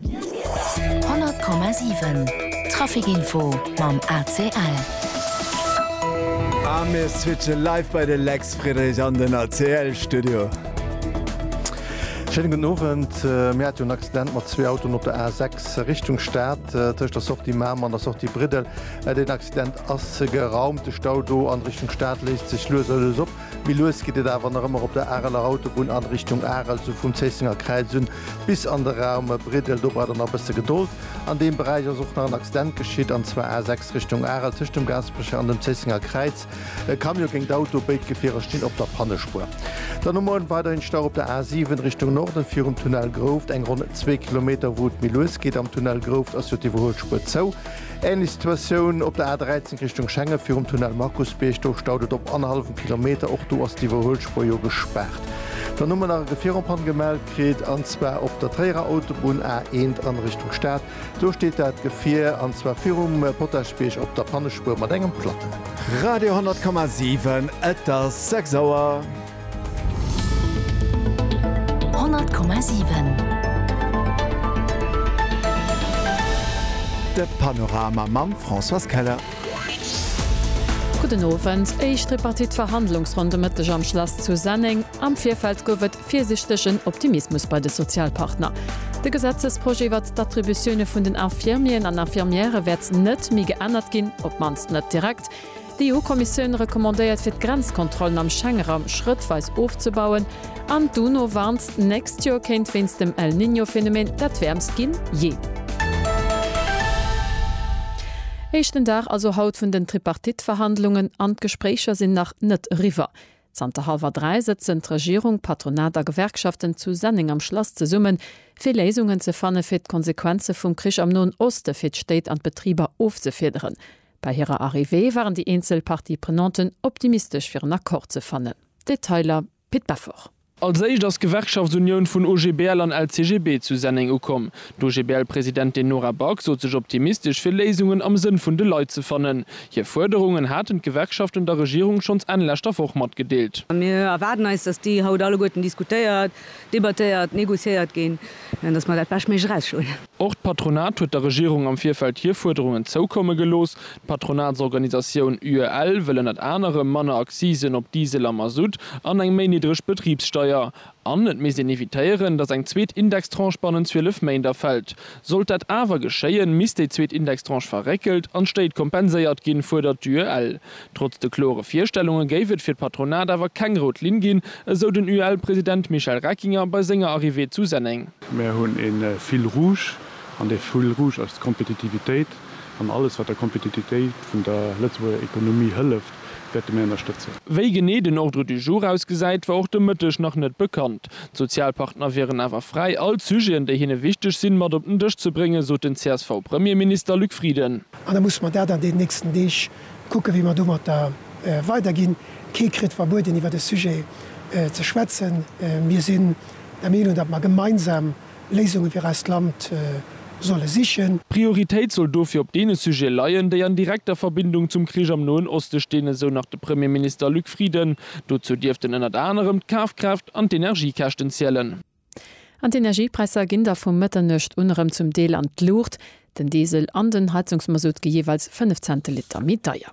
100,7 Traficinfo mam ACL. A mir switchen live bei de Lex Friedrich an den ACL Studio. Schéine gudden Owend. Mir hat jo en Accident mat zwee Autoen op der A6 Richtung Stad, tëscht der Sortie Mamer an der Sortie Briddel. Deen Accident ass geraumt. De Stau do an Richtung Stad léist sech lues a lues op. Méi lues geet et awer nach ëmmer op der Areler Autobunn an Richtung Arel, esou vum Zéissenger Kräiz un bis an de Raum Briddel. Do braucht der nach e bësse Gedold. An deem Beräich ass och nach en Accident geschitt, an zwar A6 Richtung Arel tëscht dem Gaasperecher an dem Zéissenger Kräiz. E Camion géint d'Auto, béid Gefierer stinn op der Pannespuer. Dann hu muer weiderhin Stau op der A7 Richtung Norden virum Tunnel Grouft, eng ronn zwee Kilometer. Wou et méi lues geet am Tunnel Grouft, ass jo d'Iwwerhuelspuer zou. Ähnlech Situatioun op der A 13 Richtung Schengen virum Tunnel Markusbierg. Do staut et op annerhallefem Kilometer. Och do ass d'Iwwerhuelspuer jo gespaart. Dann hu mer nach e Gefieroppann gemellt kritt, an zwar op der Tréierer Autobunn A 1 an Richtung Stad. Do steet dat Gefier, an zwar virum Potaschbierg op der Pannespuer mat engem Platten. Radio 100,7 Et ass 6 Auer. 100,7. De Panorama mam Françoise Keller. Gudden Owend. Éischt Tripartite-Verhandlungsronn de Mëtteg am Schlass zu Senneng. Am Virfeld gouf et virsichtegen Optimismus bei de Sozialpartner. De Gesetzesprojet iwwert d'Attributioune vun den Infirmieren an Infirmièrë wäert net méi geännert ginn, op d'mannst net direkt. D'EU-Kommissioun recommandéiert fir d'Grenzkontrollen am Schengeraum schrëttweis ofzebauen an d'UNO warnt, d'nächst Joer kéint wéinst dem El Niño Phänomen dat wäermst ginn jee. Éischten Dag also haut vun den Tripartite-Verhandlungen an d'Gespréicher sinn nach net eriwwer. Zanter hallwer 3 sëtzen d'Regierung, Patronat a Gewerkschaften zu Senneng am Schlass zesummen, fir Léisungen ze fanne fir d'Konsequenze vum Krich am Noen Oste fir d'Stéit an d'Betriber ofzefiederen. Bei hirer Arrivée waren déi eenzel Parties prenanten optimistesch fir en Accord ze fannen. Detailer, Pit Beffort. Als éischt ass d'Gewerkschaftsunioun vun OGBL an LCGB zu Senneng ukomm. D'OGBL-Presidentin Nora Back sot sech optimistesch fir Léisungen am Sënn vun de Leit ze fannen. Hir Fuerderungen haten d'Gewerkschaften der Regierung schonns Enn leschter Woch matgedeelt. Mir erwaarden eis, datt déi haut alleguerten diskutéiert, debattéiert, négociéiert ginn, datt mer dat Beschtméiglech erausschloen. Och d'Patronat huet der Regierung am Virfeld hir Fuerderungen zoukomme gelooss. D'Patronatsorganisatioun UEL wëll ënnert anerem manner Accisen op Diesel a Mazout an eng méi niddreg Betribssteier. An et misst een evitéieren, datt eng zweet Indextranche bannent 12 Méint erfält. Sollt dat awer geschéien, misst déi zweet Indextranche verréckelt an d'Stéit kompenséiert ginn, fuerdert d'UEL. Trotz de klore Virstellunge géif et fir d'Patronat awer keng rout Linn ginn, esou den UEL-President Michel Reckinger bei senger Arrivée zu Senneng. Mir hunn e Fil rouge, an dee Fil rouge ass d'Kompetitivitéit. An alles, wat der Kompetitivitéit vun der Lëtzebuerger Ekonomie hëlleft, wäerte mir ënnerstëtzen. Wéi genee den Ordre du jour ausgesäit, war och de Mëtteg nach net bekannt. D'Sozialpartner wieren awer fräi, all d'Sujeten, déi hinne wichteg sinn, mat op den Dësch ze bréngen, sot den CSV-Premierminister Luc Frieden. An da musse mer dat an deenen nächsten Deeg Kucke wéi mer domatter weider ginn. Kee kritt verbueden iwwert e Sujet ze schwätzen. Mir sinn der Meenung, datt mer gemeinsam Léisunge fir eist Land solle sichen. D'Prioritéit soll dofir op deene Sujete leien, déi an direkter Verbindung zum Krich am Noen Oste stinn, esou nach de Premierminister Luc Frieden. Dozou dierften ënnert anerem d'Kafkraaft an d'Energiekäschten zielen. An d'Energiepräisser ginn da vu Mëtternuecht un erëm zum Deel an d'Luucht, den Diesel an den Heizungsmasutt gi jeeweils 5 Cent de Liter méi deier.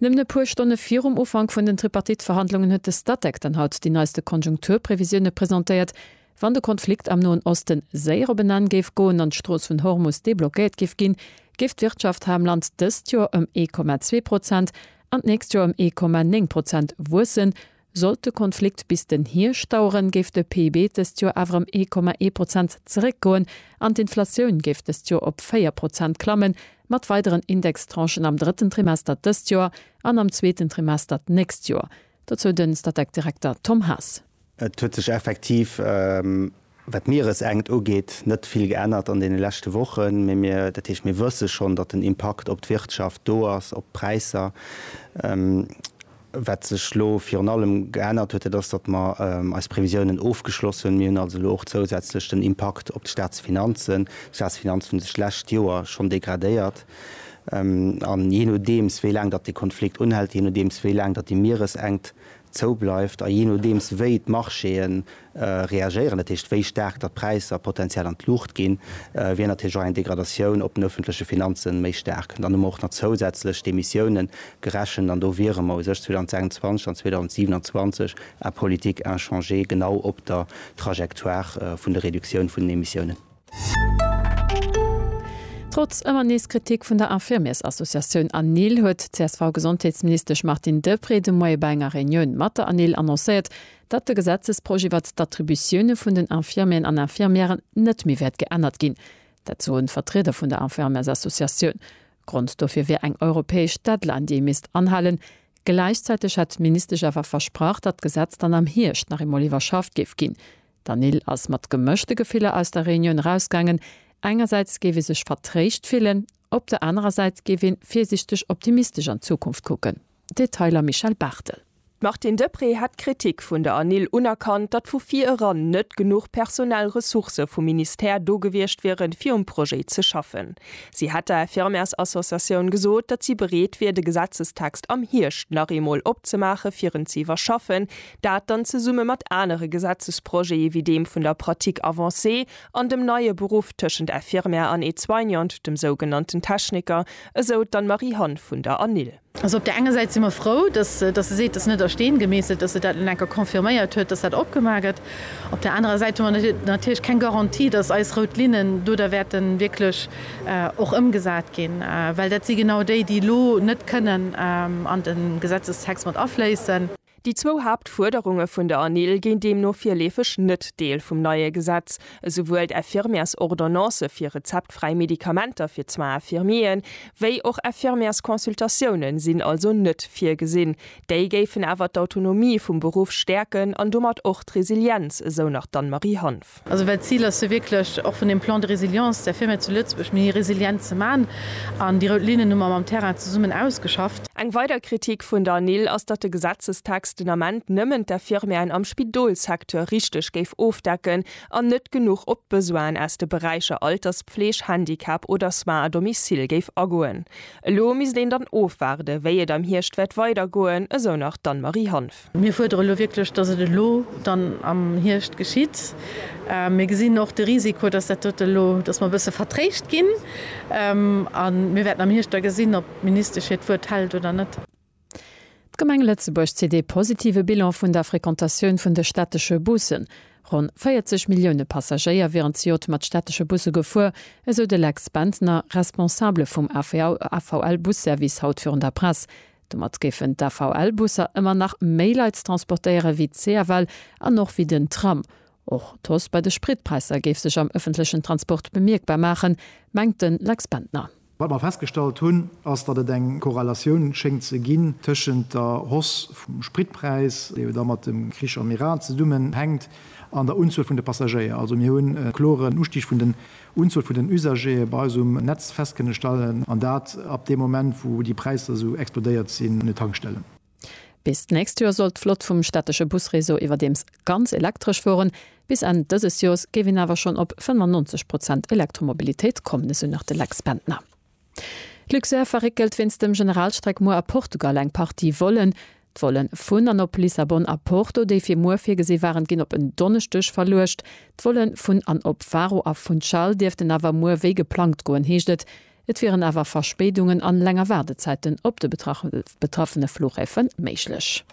Nëmmen e puer Stonne virum Ufank vun den Tripartite-Verhandlungen huet de Statec dann haut déi neiste Konjunkturprevisioune presentéiert. Wann de Konflikt am Noen Oste séier op en Enn géif goen an d'Strooss vun Hormus deblockéiert géif ginn, géif d'Wirtschaft hei am Land dëst Joer ëm ee Komma zwee Prozent an d'nächst Joer ëm ee Komma néng Prozent wuessen, Sollt de Konflikt bis den Hierscht daueren, géif de PIB dëst Joer awer ëm ee Komma ee Prozent zeréckgoen an d'Inflatioun géif dëst Joer op véier Prozent klammen, mat weideren Indextranchen am drëtten Trimester dëst Joer an am zweeten Trimester d'nächst Joer. Dozou de Statec-Direkter Tom Haas. Et huet sech effektiv Wat d'Mieresenkt ugeet, net vill geännert an deene leschte Wochen, mee mir, dat heescht, mir wësse schonn, datt den Impakt op d'Wirtschaft do ass, op d'Präisser. Wat sech elo virun allem geännert huet, dat ass, datt mer eis Previsiounen ofgeschloss hunn. Mir hunn also elo och zousätzlech den Impakt op d'Staatsfinanzen. D'Staatsfinanzen hunn sech d'lescht Joer schonn degradéiert an jee nodeems wéi laang datt dee Konflikt unhält, jee nodeems wéi laang datt déi Mieresenkt zou bleift a jee nodeems wéi d'Marchéë reagéieren, dat heescht wéi staark datt d'Präisser potenziell an d'Luucht ginn, wier natierlech och eng Degradatioun op den ëffentleche Finanze méi staark. Dann hu mer och nach zousätzlech d'Emissiounen gerechent an do wiere mer u sech 2026 an 2027 en politique inchangée genau op der Trajectoire vun der Reduktioun vun den Emissiounen. Trotz ëmmer nees Kritik vun der Infirmiers-Associatioun ANIL huet d'CSV-Gesondheetsministesch Martine Deprez de Moie bei enger Reunioun mat der ANIL annoncéiert, datt de Gesetzesprojet iwwert d'Attributioune vun den Infirmieren an Infirmièren net méi wäert geännert ginn. Dat soen Vertrieder vun der Infirmiers-Associatioun. Grond dofir wier eng europäesch Deadline, déi ee misst anhalen. Gläichzäiteg hätt d'Ministesch awer versprach, datt d'Gesetz dann am Hierscht nach eemol iwwerschafft géif ginn. D'Anil ass mat gemëschte Gefiller aus der Reunioun erausgaangen, Engersäits géif ee sech vertréischt fillen, op der anerer Säit géif ee virsiichteg optimistesch an d'Zukunft kucken. Detailer Michèle Barthel. D'Martine Deprez hätt d'Kritik vun der Anil unerkannt, datt vu vir eran net genuch personell Ressourcë vum Ministère do gewiescht wieren, fir um Projet ze schaffen. Si hätt der Infirmärsassociatioun gesot, datt si bereet wier, de Gesetzestext am Hierscht nach eemol opzemaachen, fir en ze iwwerschaffen, Dat dann zesumme mat anere Gesetzesprojete wéi deem vun der Pratique avancée an dem neie Beruff tëschent Infirmière an Aide-soignante, dem sougenannten Techniker, esou d'Anne Marie Hann vun der Anil. Also op där enger Säit si mer frou, dass se seet, et ass net a Steen gemeesselt, dass se dat elo nach eng Kéier confirméiert huet, dass dat opgemaach gëtt. Op där anerer Säit hu mer natierlech keng Garantie, dass eis rout Linnen do da wäerte wierklech och ëmgesat ginn, well dat si genau déi, déi elo net kënnen an de Gesetzestext mat afléissen. Déi zwou Haaptfuerderunge vun der ANIL ginn deemno virleefeg net Deel vum neie Gesetz. Esouwuel d'Infirmièresordonnance fir rezeptfräi Medikamenter fir d'Soins infirmiers wéi och Infirmièresconsultatioune sinn also net virgesinn. Déi géifen awer d'Autonomie vum Beruff stäerken an domat och d'Resilienz, esou nach d'Anne-Marie Hanff. Also well d'Zil ass jo wierklech, och vun deem Plan de résilience, der Firma zu Lëtzebuerg méi resilient ze maachen. An déi rout Linnen hu mer mam Terrain zesummen ausgeschafft. Eng weider Kritik vun der NIL ass, datt de Gesetzestext den Ament nëmmen d'Infirmièren am Spidolssecteur richteg géif ofdecken an net genuch op d'Besoinen aus de Beräicher Alterspfleg, Handicap oder Soins à domicile géif agoen. Elo misst een dann ofwaarden, wéi et am Hierscht wäert weidergoen, esou nach d'Anne-Marie Hanff. Mir fuerdere elo wierklech, dass et elo dann am Hierscht geschitt. Mir gesinn och de Risiko, dass dat dote elo, dass mer e bësse vertréischt ginn. A mir wäerten am Hierscht da gesinn, ob d'Ministesch hiert Wuert hält oder net. D'Gemeng Lëtzebuerg zitt ee positive Bilan vun der Frequentatioun vun de städtesche Bussen. Ronn 40 Millioune Passagéier wieren zejoert mat städtesche Busse gefuer, esou de Lex Bentner, Responsabele vum AVL-Busservice haut virun der Press. Domat géifen d'AVL-Busser ëmmer nach méi Leit transportéiere wéi d'CFL an och wéi den Tram. Och d'Hausse bei de Spritpräisser géif sech am ëffentlechen Transport bemierkbar maachen, mengt de Lex Bendtner. Wat mer festgestallt hunn, ass, datt et eng Korrelatioun schéngt ze ginn tëschent der Hausse vum Spritpräis, déi jo da mat dem Krich am Iran zesummenhänkt, an der Unzuel vun de Passagéier. Also mir hunn e kloren Ustig vun de Unzuel vun den Usagere bei eis um Netz fest kënne stellen, an dat ab deem Moment, wou déi Präisser esou explodéiert sinn un de Tankstellen. Bis d'nächst Joer soll d'Flott vum städtesche Busreseau iwwerdeems ganz elektresch fueren. Bis Enn dëses Joers géif een awer schonn op 95 Prozent Elektromobilitéit kommen, esou nach de Lex Bendtner. D'Luxair verréckelt wéinst dem Generalstreck muer a Portugal eng Partie Vollen. D'Volle vun an op Lissabon a Porto, déi fir muer virgesi waren, ginn op en Donneschdeg verluecht. D'Volle vun an op Faro a Funchal dierften awer muer wéi geplangt goen, heescht et. Et wieren awer Verspéidungen an länger Waardezäiten op de betraffene Flughäfe méiglech.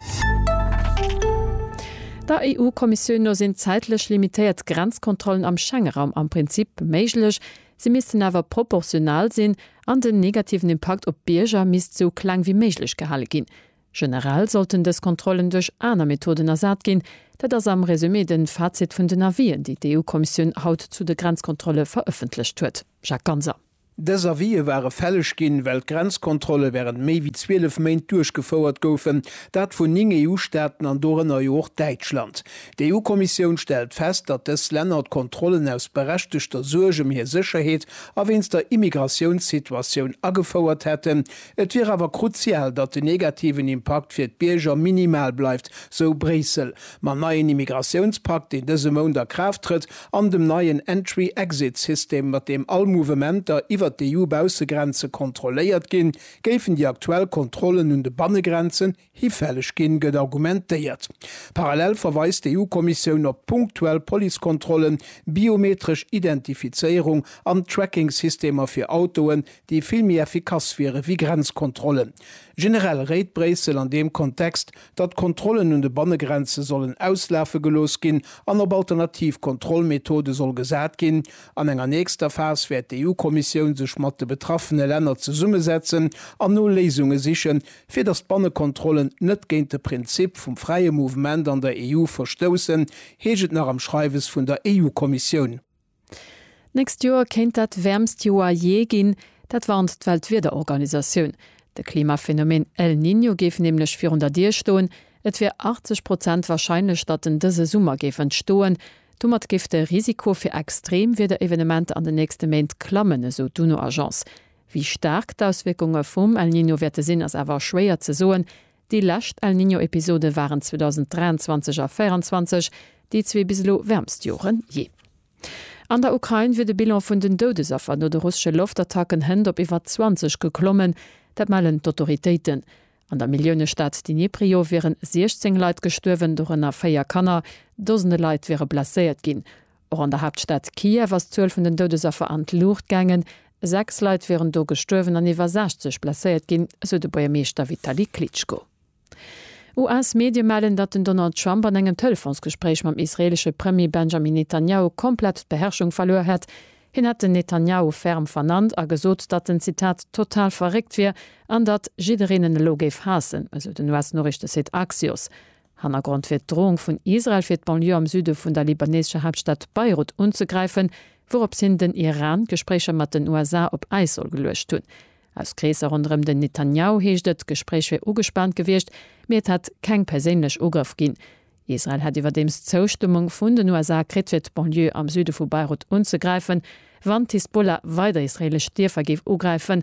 Der EU-Kommissioun no sinn zäitlech limitéiert Grenzkontrollen am Schengeraum am Prinzip méiglech, Si missten awer proportional sinn an den negativen Impakt op d'Bierger misst sou kleng wéi méiglech gehale ginn. Generell sollten dës Kontrollen duerch aner Methoden ersat ginn. Dat ass am Resumé de Fazit vun den Avisen, déi d'EU-Kommissioun haut zu de Grenzkontrolle verëffentlecht huet. Jacques Ganser. Dës Avise ware fälleg ginn, well d'Grenzkontrolle wärend méi wéi 12 Méint duerchgefouert goufen, dat vun 9 EU-Staaten an dorënner jo och Däitschland. D'EU-Kommissioun stellt fest, datt dës Länner d'Kontrollen aus berechtegter Suerg ëm hir Sécherheet a wéinst der Immigratiounssituatioun agefouert hätten. Et wier awer kruzial, datt den negativen Impakt fir d'Bierger minimal bleift, sou Bréissel. Mam neien Immigratiounspakt, deen dëse Mount a Kraaft trëtt, an dem neien Entry-Exit-System, mat deem all Mouvementer iwwer d'EU-Baussegrenze kontrolléiert ginn, géifen déi aktuell Kontrollen un de Bannegrenzen, Hifälleg ginn, gëtt argumentéiert. Parallel verweist d'EU-Kommissioun op punktuell Policekontrollen, biometresch Identifizéierung an Trackingsystemer fir Autoen, déi vill méi effikass wiere wéi Grenzkontrollen. Generell réit Bréissel an deem Kontext, datt d'Kontrollen un de Bannegrenze sollen auslafe gelooss ginn an op alternativ Kontrollmethode soll gesat ginn. An enger nächster Phas wäert d'EU-Kommissioun sech mat de betraffene Länner zesummesetzen an no Léisunge sichen, Fir datt d'Bannekontrollen net géint de Prinzip vum fräie Mouvement an der EU verstoussen, heescht et nach am Schreiwes vun der EU-Kommissioun. D'nächst Joer kéint dat wäermst Joer jee ginn. Dat warnt d'Weltwiederorganisatioun. De Klimaphenomeen El Niño géif nämlech virun der Dier stoen. Et wier 80 Prozent warscheinlech, datt en dëse Summer géif entstoen. Domat géif de Risiko fir extreem Wiederevenementer an den nächste Méint klammen, esou d'UNO-Agence. Wéi staark d'Auswierkunge vum El Niño wäerte sinn, ass awer schwéier ze soen. Déi lescht El Niño-Episode waren 2023 a 2024 déi zwee bis elo wäermst Jore jee. An der Ukrain wier de Bilan vun den Doudesaffer no de russesche Loftattacken hënt op iwwer 20 geklommen. Dat mellen d'Autoritéiten. An der Milliounestad Dniprio wieren 16 Leit gestuerwen, dorënner véier Kanner. Dosende Leit wiere blesséiert ginn. Och an der Haaptstad Kiew ass d'Zuel vun den Doudesaffer an d'Luucht gaangen. Sechs Leit wieren do gestuerwen an iwwer 60 blesséiert ginn, esou de Buergermeeschter Vitali Klitschko. US-Medie mellen, datt den Donald Trump an engem Telefonsgespréich mam israeelesche Premier Benjamin Netanjahu komplett d'Beherrschung verluer hätt. Hien hätt den Netanjahu ferm vernannt a gesot, datt en, Zitat, total verréckt wier an datt jiddereen en elo géif haassen, esou den US-Noriichtesite Axios. Hannergrond wier d'Droung vun Israel fir d'Banlieue am Süde vun der libaneesescher Haaptstad Beirut unzegräifen, wouroops hien den Iran d'Gespréicher mat den USA op Äis soll geluecht hunn. Aus Kreesser ronderëm den Netanjahu heescht et, d'Gespréich wier ugespaant gewiescht, mee et hätt keng perséinlech Ugrëff ginn. Israel hätt iwwerdeems d'Zoustëmmung vun den USA kritt fir d'Banlieue am Süde vu Beirut unzegräifen, wann d'Hisbollah weider israeelesch Dierfer géif ugräifen,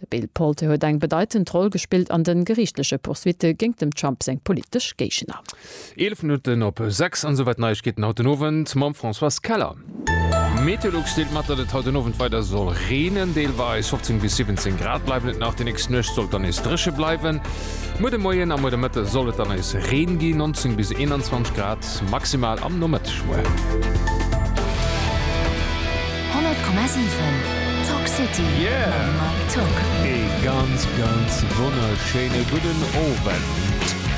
De Bill Palte huet eng bedeitend Roll gespillt an de geriichtleche Poursuitte géingt dem Trump seng politesch Géigner. 11 Minutten op 6 an esouwäit d'Neiegkeeten haut den Owend mam Françoise Keller. Meteolux deelt mat, datt et haut den Owend weider soll reenen, deelweis 15 bis 17 Grad bleiwen et nach. Déi nächst Nuecht soll et dann nees dréche bleiwen. Muer de Moien a muer de Mëtte soll et dann nees Reen ginn, 19 bis 21 Grad. Grad maximal am Nomëtteg muer. 100,7 Talk City mam Mike Tock. Ee ganz ganz wonnerschéine gudden Owend.